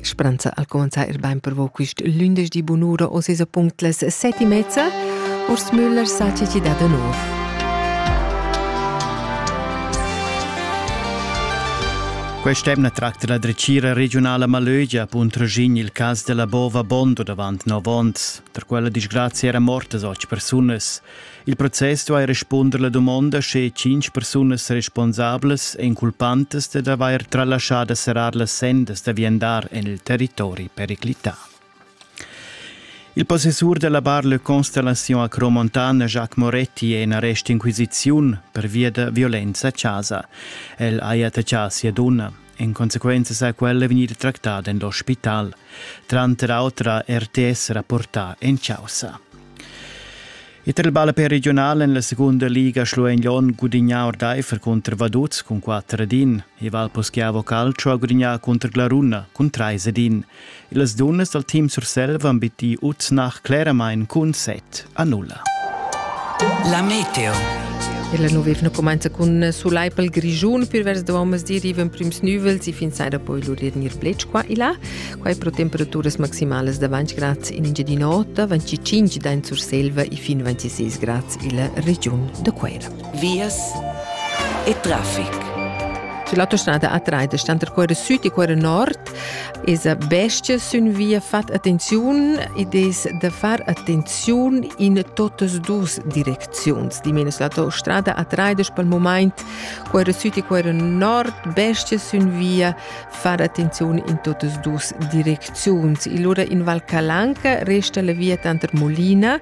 Speranza al comenzar ir bain per vo quist lündeschdi bunura o sesa punct las set e mezza. Urs Müller sa chi chi dà da nouv. Quest'emna tracta la drecira regionala Malögia punt Regin il cas della bova Bondo davant 9 onns. Per quella disgrazia era mortas 8 persunas. Il process duai respunder la dumonda sche tschintg persunas responsablas èn culpantas dad avair tralaschà da serrar las sendas da viandar en il territori periclità. Il possessur della bar Le Constellation a Cromontana, Jacques Moretti, è in arrest inquisiziun pervia da violenza a casa. El ha attacchà sia donna. En consequenza sa quella vegnida tractada en l'ospital, tranter autra RTS rapportà en causa. E tra il ballapè regionale nella seconda liga Schluegnon gudignà ordaifer contro Vaduz con 4 din e Valposchiavo Calcio ha gudignato contro Glaruna con 3 din. Las dunnas dal team Surselva han bittì Uznach cleramain cun set a nulla. La meteo. La nova evna cumanza cun sulai pel Grischun. Pür vers da mezzdi rivan prüms nüvels e fin saira poi lur ir gnir blech qua e là. Quai pro temperaturas maximalas da 20 grads in Engiadin'Ota, 25 da in Surselva e fin 26 grads illa regiun da Cuera. vias e traffic. L'autostrada A3 sta tra quella sud e quella nord es a bestia sün via fat attenziun ed es da far attenziun in totas dus direcziuns. Di menos l'autostrada A3 pel moment quella sud e quella nord bestia sün via far attenziun in totas dus direcziuns. E lura in Val Calanca resta la via tanter Molina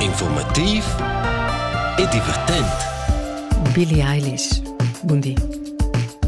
Informativ e divertent. Billie Eilish. Buondì.